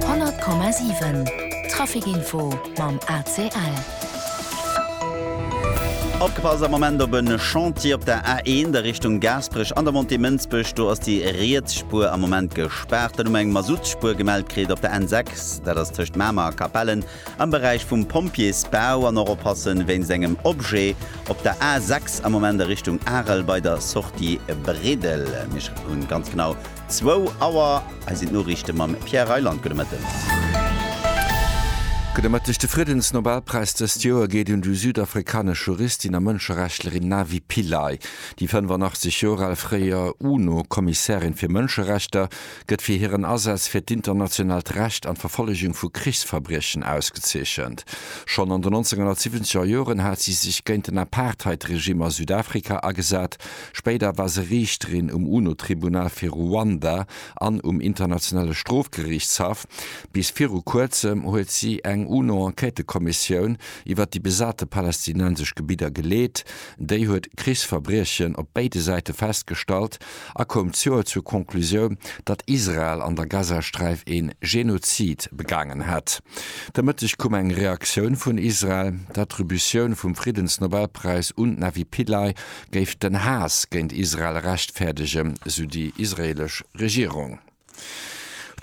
100,7 Traficinfo mam ACL. Opgepasst am Moment op e Chantier op der A1 a Richtung Gaasperech an der Montée Mënsbech. Do ass déi riets Spuer am Moment gespaart. Dann hu mer eng Masuttspuer gemellt kritt op der N6, dat ass tëscht Mamer a Capellen am Beräich vum Pompjeesbau. An och oppasse wéinst engem Objet op der A6 am Moment a Richtung Arel bei der Sortie Bredel. Mir hu ganz genau Zwou Auer, hei sinn d'Noriichte mam Pierre Reyland. Gudde Mëtten. Gudde Mëtteg. De Friedensnobelpräis dëst Joer geet un déi südafrikanesch Juristin a Mënscherechtlerin Navi Pillay. Déi 85 Joer al fréier UNO-Kommissärin fir Mënscherechter gëtt fir hiren Asaz fir d'internationaalt Recht an d'Verfollegung vu Krichsverbriechen ausgezeechent. Schonn an den 1970er Joren hat si sech géint den Apartheid-Regime a Südafrika agesat, Spéider war se Riichterin um UNO-Tribunal fir Ruanda an um Internationale Strofgeriichtshaff. Bis viru Kuerzem huet si eng UNO-Enquêtekommissioun iwwer déi besate palästinensesch Gebidder geleet. Déi huet Krichsverbriechen op béide Säite festgestallt a koum d'Joer zur Conclusioun, datt Israel an der Gazasträif ee Genozid begaangen hätt. De Mëtteg koum eng Reaktioun vun Israel. D'Attributioun vum Friddensnobelpräis un d'Navi Pillay géif den Haass géint Israel rechtfäerdegen, sou déi israeelesch Regierung.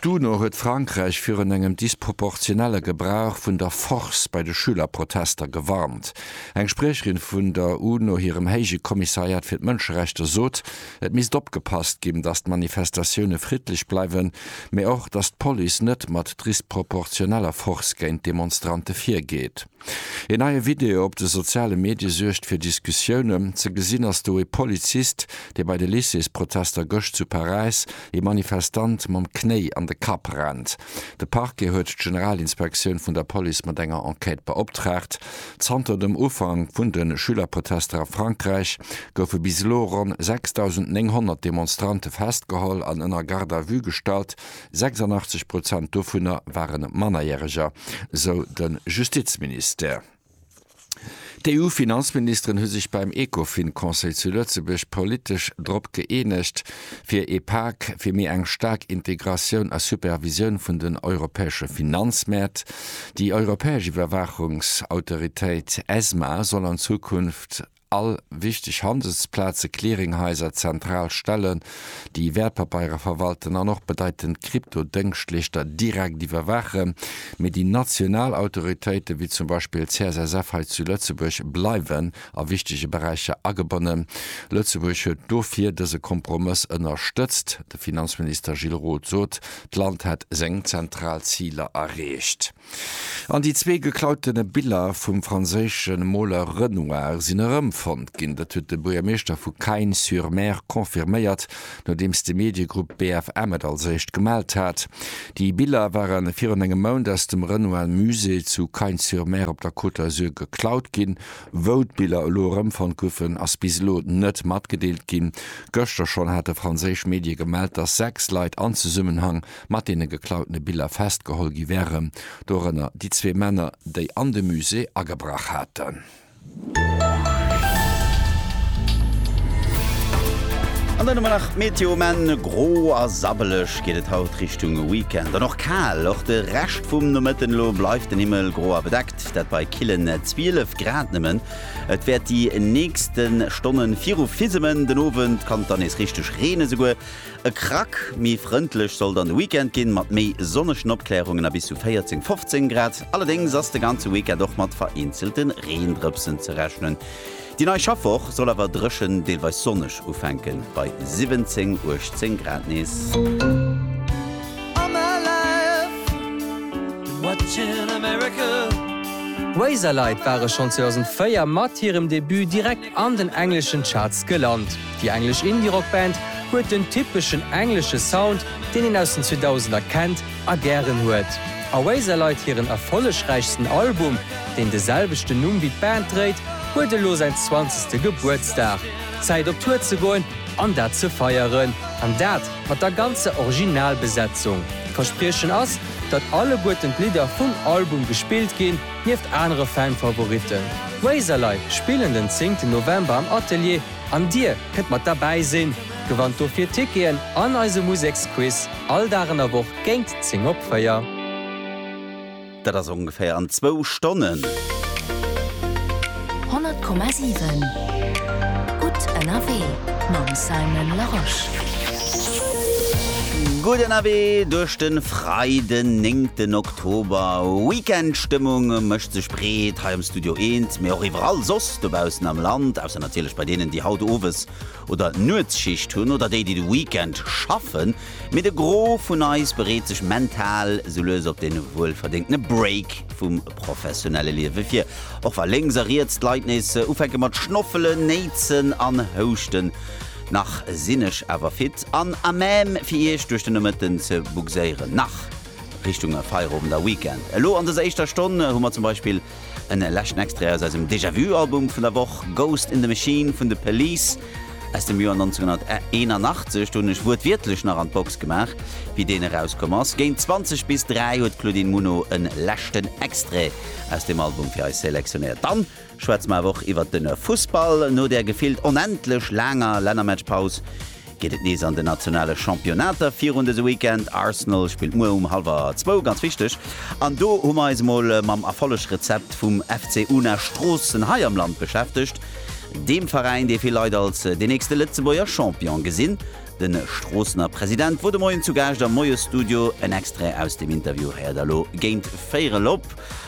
D'UNO huet Frankräich virun engem disproportionelle Gebrauch vun der Force bei de Schülerprotester gewarnt. Eng Spriecherin vun der UNO hirem Héije Kommissariat fir d'Mënscherechter sot, et misst opgepasst ginn, datt d'Manifestatioune friddlech bleiwen, mee och, datt d'Police net mat drisproportioneller Force géint d'Demonstrante virgeet. Een neie Video op de soziale Medie suergt fir Diskussiounen. Ze gesinn ass do e Polizist, dee bei de Lycées-Protester gëscht zu Paräis ee Manifestant mam Knéi an de Kapp rennt. De Parquet huet d'Generalinspektioun vun der Police mat enger Enquête beoptraagt. Zanter dem Ufank vun de Schülerprotester a Frankräich goufe bis elo ronn 6.900 Demonstrante festgeholl an ënner Garde à vue gestallt, 86 Prozent dovunner ware Mannerjäreger, sou de Justizministère. D'EU-Finanzministeren hu sech beim Ecofin-Conseil zu Lëtzebuerg politesch drop gëeenegt, fir ee Pak fir méi eng staark Integratioun a Supervisioun vun den europäesche Finanzmäert. Déi europäesch Iwwerwaachungsautoritéit, ESMA, soll an Zukunft All wichteg Handelsplaze, Clearinghaiser, zentral Stellen, déi Wäertpapeiere verwalten an och bedeitend Kryptodëngschtleeschter direkt iwwerwaachen, mee déi national Autoritéiten, wéi zum Beispill d'CSSF hei zu Lëtzebuerg, bleiwen a wichtege Beräicher agebonnen. Lëtzebuerg huet dofir dëse Kompromëss ënnerstëtzt. De Finanzminister Gilles Roth sot, d'Land hätt seng zentral Ziler erreecht. An déi zwee geklautene Biller vum franséische Moler Renoir sinn erëmfonnt ginn. Dat huet de Buergermeeschter vu Cagnes-sur-Mer confirméiert, nodeems de Mediegrupp BFM et als éischt gemellt hat. Déi Biller ware virun engem Mount aus dem Renoir Musée zu Cagnes-sur-Mer op der Côte d'Azur geklaut ginn. Wou d'Biller elo erëmfonnt goufen, ass bis elo net matgedeelt ginn. Gëschter schonn hate franséisch Medie gemellt, datt sechs Leit an Zesummenhang mat deene geklautene Biller festgeholl gi wäre, dorënner déi zwee Männer, déi an de Musée agebrach haten. An dann hu mer nach d'Meteo, um Enn gro a sabbeleg geet et haut Richtung Weekend an och kal. Och de Rescht vum Nomëtten elo bleift den Himmel gro a bedeckt, dat bei killen 12 Grad nëmmen. Et wäert déi nächste Stonne viru fisemen, den Owend kann et dann nees richteg reenen, esouguer E Krack méi frëndlech sollt an de Weekend ginn, mat méi sonnegen Opkläerungen a bis zu 14, 15 Grad. Allerdéngs ass de ganze Weekend och mat vereenzelte Reendrëpsen ze rechnen. Déi nei Schaffwoch soll awer dréchen, deelweis sonneg ufänken, bei 17, 18 Grad nees. D'Razorlight ware schonn 2004 mat hirem Debut direkt. an den engleschen Charts gelant. Déi englesch Indie-Rock-Band huet den typeschen englesche Sound, deen een aus den 2000er kennt a gären huet. Oasis leit hiren erfollegräichsten Album, deen de selwechten Numm wéi d'Band dréit, huet elo säin zwanzegste Gebuertsdag. Zäit op Tour ze goen an dat ze feieren. An dat mat der ganzer Originalbesetzung. D'Verspriechen ass, datt alleguerten d'Lidder vum Album gespillt ginn. Nieft anere Fan-Favoritten, Razorlight spillen den 10 November am Atelier an dir kënnt mat derbäi sinn. Gewannt dofir Ticketen an eise Museksquiz all Dag an der Woch géint 10 op 4. Dat ass ongeféier an zwou Stonnen. 100,7 Gutt ënnerwee mam Simon Larosche. Gutt ënnerwee duerch de Freiden, 9 Oktober. D'Hober Weekend Stëmmung mécht sech breet hei am Studio Eent, mee och iwwerall soss dobaussen am Land, ausser natierlech bei deenen, déi haut Owes oder Nuetsschicht hunn oder déi, déi de Weekend schaffen. Mee de Gros vun eis bereet sech mental sou lues op dee wuelverdéngtene Break vum professionelle Liewe vir, och wa lénks a riets d'Leit nees ufänke mat schnoffelen, néitsen an houschten. Nach sinn ech awer fit an à même fir Iech duerch de Nomëtten ze bugséieren. Nach! Richtung Feierowend a Weekend. Elo an dëser éischter Stonn hu mer zum Beispill en leschten Extrait aus eisem Déjà Vu Album vun der Woch, Ghost in the Machine vun The Police aus dem Joer 1981. Do hunn ech wuertwiertlech nach an d'Box gemaach, wéi deen erauskomm ass. Géint 20 bis 3 huet d'Claudine Muno en leschten Extrait aus deem Album fir eis selektionéiert. Dann. Schwätze mer awer och iwwert den Fussball. No der gefillt onendlech laanger Lännermatchpaus geet et nees an den nationale Championnater virun dëse Weekend. Arsenal spillt muer um hallwer zwou, ganz wichteg, an do hu mer eis emol mam Erfollegrezept vum FC Una Stroossen hei am Land beschäftegt, deem Veräin, dee vill Leit als deen nächste Lëtzebuerger Champion gesinn. De Stroossener President wor de Moien zu Gaascht am Moiesstudio. En Extrait aus dem Interview héiert der lo géint véierel op.